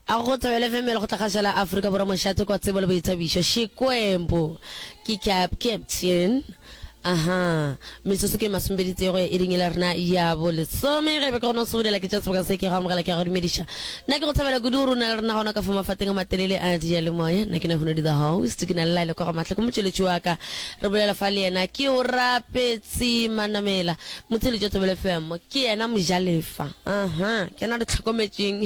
a go tsebele fm le go tlagašela aforika borwa mošate kwa tsebo le boithabišo xikwembu ke cap captain aha metsotso ke masombedi tsego e ringile rena ya bolesome ge be ke gona go sobolela ke tša seboka se ke go amogela ke go dumediša nna ke go tshabela kudu gore o na le rena gona ka fa mafateng a matelele a dia le moya nna ke ne gone di the host ke na le laele kwa go matlha ke motšweletši wa ka re bolela fa le yena ke o rapetse manamela Motseletšo Tsebele FM ke yena mojalefa. Aha, ke na re tlhokometšeng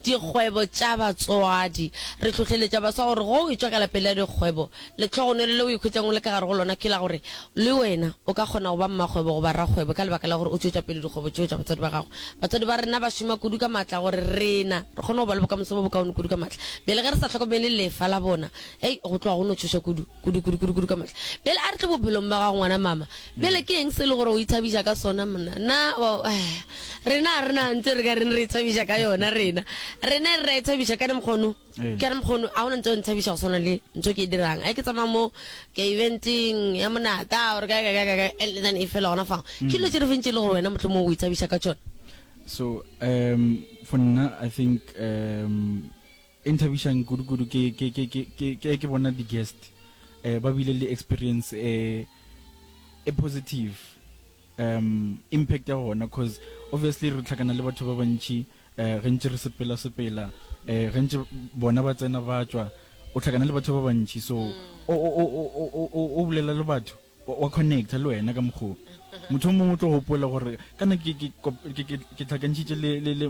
dikgwebo tša batswadi. Re hlohleletša baswa gore go e tšwa ka lapeng la dikgwebo, letlhogonolo le o ikhwetšang o le ka gare go lona ke la gore le wena o ka kgona go ba mmakgwebo goba rakgwebo ka lebaka la gore o tšwetša pele dikgwebo tšeo tša batswadi ba gago. Batswadi ba rena ba šoma kudu ka maatla gore rena re kgone go ba le bokamoso bo bokaone kudu ka maatla. Bjale ge re sa hlokomele lefa la bona, hei, go tloga go no tšhoša kudu. kudu kudu kudu kudu ka mohla bjale a re tle bophelong ba ga ngwana mama bjale ke eng se e le gore o ithabiša ka sona mna na eh, rena a rena ntse re ka reng re ithabiša ka yona rena rena e re ra ithabiša ka ne mokgono ee. ka ne mokgono a ona ntse o nthabiša go swana le ntho ke e dirang a ke tsamaya mo ka eventeng ya monaka ore kakakakakathen e fela gona fango ke dilo tse re fentse e le gore wena motlho mo o ithabiša ka tsone so um for nna i think um E nthabišang kudu kudu ke ke ke ke ke ke ke bona di guest eh ba bile le experience e e positive um impact ya gona coz obviously re tlhakana le batho ba bantši eh ge ntše re sepela sepela eh ge ntše bona ba tsena ba tšwa o tlhakana le batho ba bantši so o o o o o o o bolela le batho Wa connecta le wena ka mokgo motho o mongwe o tlo gopola gore kana ke ke ke ke ke tlhakantšitše le le le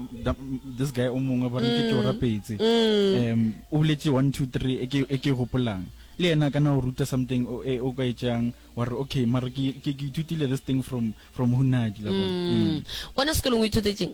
this guy o mongwe ba re ke ke o mm. rapetse mm. um o boletse 1 2 3 e ke e ke gopolang le yena kana o ruta something o e o ka etsang wa re okay mara ke ke ke ithutile this thing from from hunadi la bona mm. wena sekolong o ithutetseng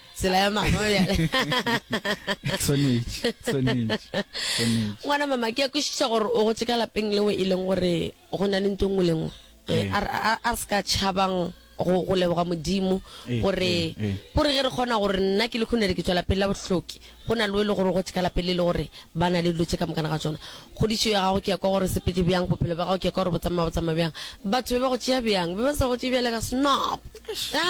tsela ya mama bjale Tshwanetše, tshwanetše, tshwanetše. ngwana mama ke ya kwešiša gore o gotse ka lapeng leo e leng gore go na le nto nngwe le nngwe Eh, Ee. a re- a a re se ka tšhabang go go leboga modimo Ee, gore ee, ee. gore ge re kgona gore nna ke le khonere ke tswa lapeng la bohloki go na le o e le gore o gotse ka lapeng le e le gore ba na le dilo tse ka mokana ga tsona kgodišo ya gago ke ya kwa gore sepete bjang bophelo ba gago ke ya kwa gore botsamaya botsamaya bjang batho be ba go tšea bjang be ba sa go tšea bjale ka snob Ah,